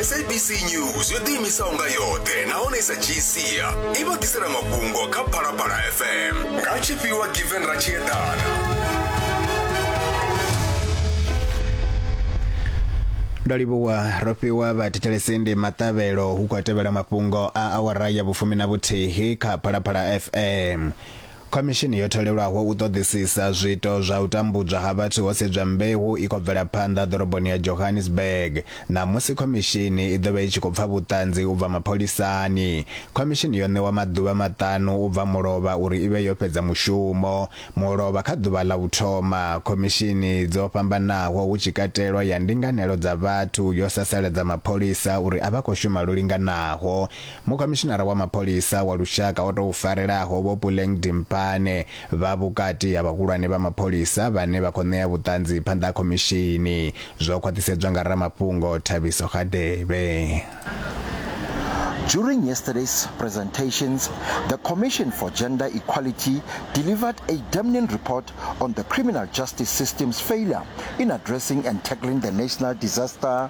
sabc news yo ḓiimisaho nga yoṱhe nahone i sa dzhii sia i vha ḓisela mafhungo kha phalaphala fm nga tshifhiwa given ra tshi eḓana ndo livhuwa ro fhiwa vhathetshelesi ndi maṱavhelo hu khou tevhela mafhungo a awara ya vhufumi na vhuthihi kha phalaphala fm Khomishini yo tholelwaho u ṱoḓisisa zwiito zwa u tambudzwa ha vhathu ho sedzwa mbeu i khou bvela phanḓa ḓoroboni ya Johannesburg. Ṋamusi khomishini i ḓo vha i tshi khou pfa vhuṱanzi u bva mapholisani. Khomishini yo ṋewa maḓuvha maṱanu u bva mulovha uri i vhe yo fhedza mushumo. Mulovha kha ḓuvha ḽa u thoma, khomishini dzo fhambanaho hu tshi katelwa ya ndinganelo dza vhathu yo sasaladza mapholisa uri a vha khou shuma lwo linganaho. Mukhomishinara wa mapholisa wa lushaka o tou farelaho Vho Puleng Dimpane vha vhukati ha vhahulwane vha mapholisa vhane vha khou ṋea vhuṱanzi phanḓa ha khomishini, zwo khwaṱhisedzwa nga ramafhungo Thabiso Hadebe. During yesterday's presentations, the Commission for Gender Equality delivered a damning report on the criminal justice system's failure in addressing and tackling the national disaster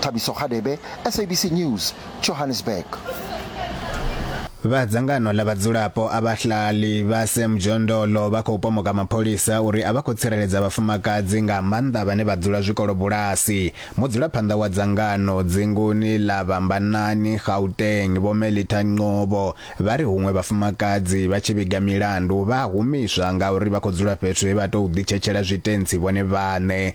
Thabiso Hadebe, SABC News, Johannesburg. Vha dzangano ḽa vhadzulapo a vhahlali vha se mujondolo vha khou pomoka mapholisa uri a vha khou tsireledza vhafumakadzi nga maanḓa vhane vha dzula zwikolobulasi. Mudzulaphanḓa wa dzangano dzinguni ḽa Vhambanani, Gauteng, Vho Melita Nqobo, vha ri huṅwe vhafumakadzi vha tshi vhiga milandu vha humiswa ngauri vha khou dzula fhethu he vha tou ḓitshetshela zwitentsi vhone vhaṋe.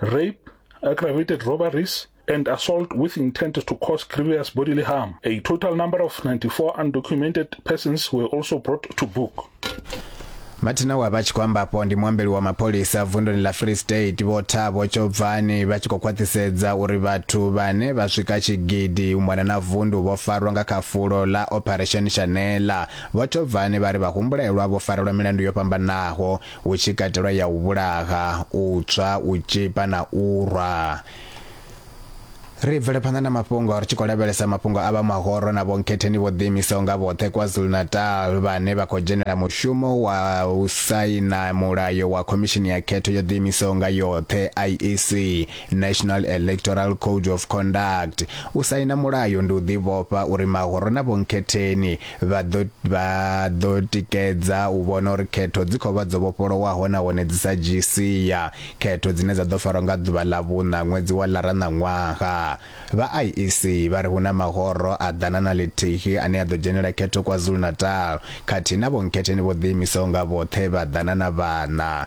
rape, aggravated robberies, and assault with intent to cause grievous bodily harm. A total number of 94 undocumented persons were also brought to book. matina wa vha tshi khou ambapo ndi muambeli wa mapholisa vunduni ḽa free state vho thabo tshobvani vha tshi khou khwaṱhisedza uri vhathu vhane vha swika tshigidi u mona na vundu vho farwa nga kha fulo ḽa operation shanela vho tshobvani vha ri vhahumbulelwa vho farelwa milandu yo fhambanaho hu tshi katelwa ya u vhulaha u tswa u tshipa na u rwa ri bvele phanḓa na mafhungo ri tshi khou lavhelesa mafhungo a vha mahoro na vhonkhetheni vho ḓiimisaho nga vhoṱhe kwazulu-natal vhane vha khou dzhenela mushumo wa u saina mulayo wa khomishini ya khetho yo ḓiimisaho nga yoṱhe iec national electoral code of conduct u saina mulayo ndi u ḓivhofha uri mahoro na vhonkhetheni vha ḓo vha ḓo tikedza u vhona uri khetho dzi khou vha dzo vhofholowaho nahone dzi sa dzhii sia khetho dzine dza ḓo farwa nga ḓuvha ḽa vhuṋa ṅwedzi wa lara na ṅwaha vha IEC vha ri hu na mahoro a ḓana na ḽithihi ane a ḓo dzhenela khetho KwaZulu-Natal khathihi na vhonkhetheni vho ḓiimisaho nga vhoṱhe vha ḓana na vhana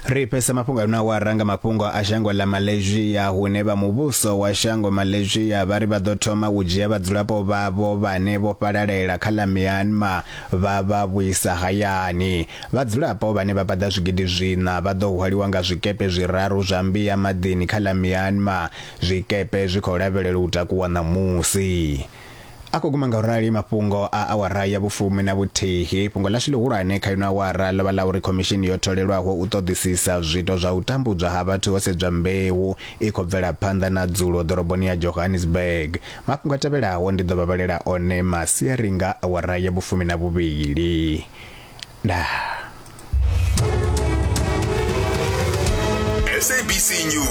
Ri pesa mafhungo na wa ranga mafhungo a shango ḽa Malaysia hune vha muvhuso wa shango Malaysia vha ri vha ḓo thoma u dzhia vhadzulapo vhavho vhane vho fhalalela kha ḽa Myanmar vha vha vhuisa hayani. Vhadzulapo vhane vha paḓa zwigidi zwiṋa vha ḓo hwaliwa nga zwikepe zwiraru zwa mbia maḓini kha ḽa Myanmar. Zwikepe zwi khou lavhelelwa u takuwa ṋamusi. A khou guma nga u rali mafhungo a awara ya vhufumi na vhuthihi. Fhungo ḽashu ḽihulwane kha ino awara ḽo vha ḽa uri khomishini yo tholelwaho u ṱoḓisisa zwiito zwa u tambudzwa ha vhathu ho sedzwa mbeu i khou bvela phanḓa na dzulo ḓoroboni ya Johannesburg. Mafhungo a tevhelaho ndi ḓo vha vhalela one masiari nga awara ya vhufumi na vhuvhili. Ndaa. SABC News.